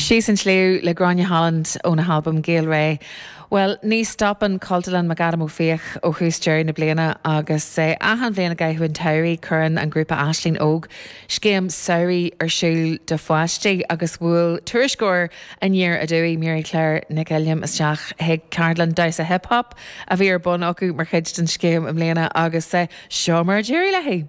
Síos an sliabh le Gráinne Holland óna halbam Gaelré. Bhuel, ní stopann Cultúrlann McAdam Ó Fiaich ó thús deireadh na bliana agus achan bhliain i gcaitheamh an tsamhraidh cuireann an grúpa Aisling Óg scéim samhraidh ar siúl do pháistí agus bhuail tuairisceoir Aniar Aduaidh, Mary Claire Nic Uilliam isteach chuig ceardlann damhsa hip hop a bhí ar bun acu mar chuid den scéim i mbliana agus seo mar a d'éirigh léi.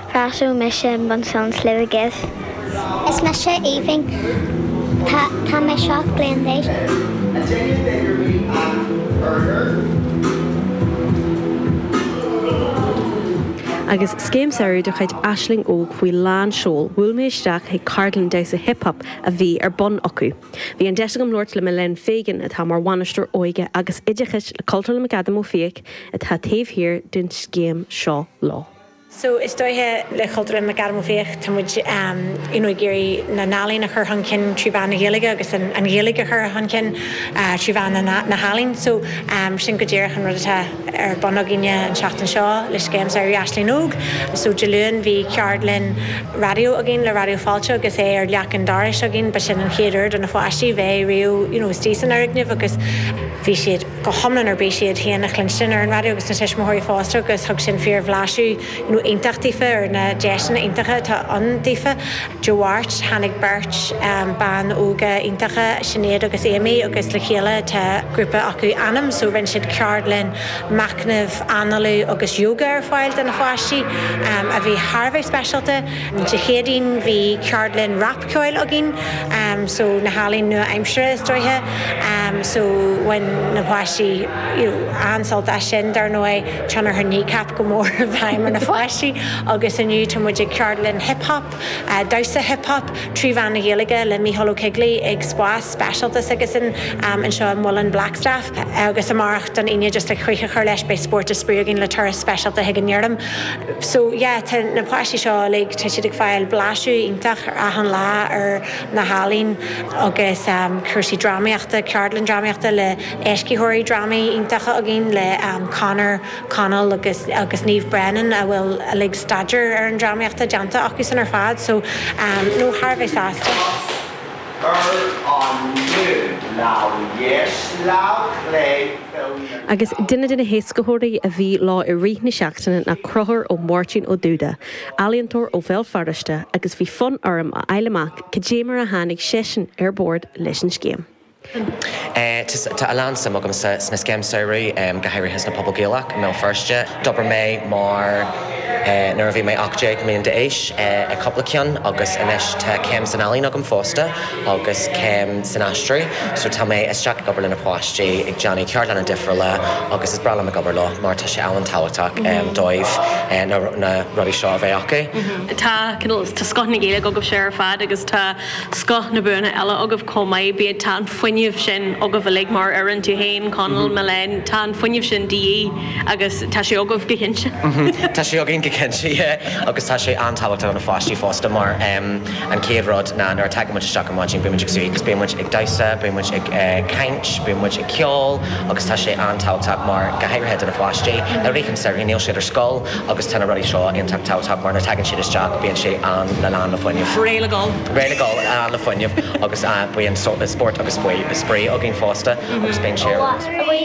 Casadh mise bun san Sliabh-gibh. Is mise Aoibhinn, tá mé seacht bliain d'aois. A Jenny Beggar me an Burger. Agus scéim samhraidh de chuid Aisling Óg faoi lán seoil, bhuail mé isteach chuig ceardlann damhsa hip hop a bhí ar bun acu. Bhí an deis agam labhairt le Milène Fegan, atá mar bhainisteoir óige agus oideachais le Cultúrlann McAdam Ó Fiaich, atá taobh thiar den scéim seo leo. So is dóiche le Cultúrlann McAdam Ó Fiaich tá muid you know ag iarraidh na n-ealaíon a chur chun cinn trí mheán na Gaeilge agus an Ghaeilge a chur chun cinn trí mheán na healaíon. So sin go díreach an rud atá ar bun againne an tseachtain seo le scéim samhraidh Aisling Óg. So Dé Luain bhí ceardlann raidió againn le Raidió Fáilte agus é ar leac an dorais againn. Ba sin an chéad uair do na pháistí bheith riamh you know istigh san fhoirgneamh agus bhí siad. go hiomlán ar bís iad féin a chluinstin ar an raidió agus na tuismitheoirí fosta agus thug sin fíor-bhlaiseadh iontach daofa ar na deiseanna iontacha atá ann daofa. Dé Máirt, tháinig beirt ban óga iontacha, Sinéad agus Amy, agus le chéile tá grúpa acu, Anam, so rinne siad ceardlann machnaimh, análú agus yoga ar fáil do na pháistí a bhí thar a bheith speisialta. Dé Céadaoin bhí ceardlann rapcheoil againn so na healaíona nua aimsire is dóiche so bhain na páistí you know an-sult as sin. Dar ndóigh tionchar Kneecap go mór i bhfeidhm ar na páistí agus inniu tá muid ag ceardlann hip hop, damhsa hip hop trí mheán na Gaeilge le Micheál Ó Coigligh ag Spás. speisialta s'aigesan anseo i Muileann Blackstaff agus amárach don Aoine just le críoch a chur leis beidh spórt is spraoi againn le turas speisialta chuig an fheirm so yeah tá na páistí seo uilig tá siad ag fáil blaiseadh iontach ar achan lá ar na healaín agus cúrsaí drámaíochta ceardlann drámaíochta le éascaitheoirí drámaí iontacha againn le Conor Connell agus agus Niamh Brennan a bhfuil uilig staidéar ar an drámaíochta déanta acusan ar fad so no thar a bheith sásta. Ar an liú lámh dheis lámh chlé fill na gleann. Agus duine de na héascaitheoirí a bhí leo i rith na seachtaine ná Conchúr Ó Máirtín Ó Dúda, ealaíontóir ó Bhéal Feirste agus bhí fonn orm a fháil amach cad é mar a tháinig seisean ar bord leis an scéim. Tá a lán suim agamsa sna scéim samhraidh, go háirithe sna pobail Gaelach i mBéal Feirste. D'obair mé mar nuair a bhí mé ocht déag mbliain d'aois ag cúpla ceann agus anois tá céim san ealaín agam fosta agus céim san aistriú so tá mé isteach ag obair le na páistí ag déanamh ceardlanna difriúla agus is breá liom ag obair leo mar tá sé an-tábhachtach dóibh na rudaí seo a bheith acu. Tá scoth na Gaeilge agaibhse ar fad agus tá scoth na buanna eile agaibh. chomh maith. Bíodh tá an fuinneamh sin agaibh uilig mar fhoireann, tú féin, Conall, Milène, tá an fuinneamh sin de dhíth agus tá sé agaibh go cinnte. Tá sé againn go cinnte, yeah. Agus tá sé an-tábhachtach do na pháistí fosta mar an chéad rud ná nuair a tagann muid isteach ar maidin bíonn muid ag suí agus bíonn muid ag damhsa, bíonn muid ag caint, bíonn muid ag ceol agus tá sé an-tábhachtach mar, go háirithe do na páistí, uilig an samhradh níl siad ar scoil agus tá na rudaí seo iontach tábhachtach mar nuair a tagann siad isteach bíonn sé an, le lán le fuinneamh. Gaeilge á fhoghlaim le fuinneamh agus bíonn spórt agus spraoi againn fosta agus bíonn sé ar eolas.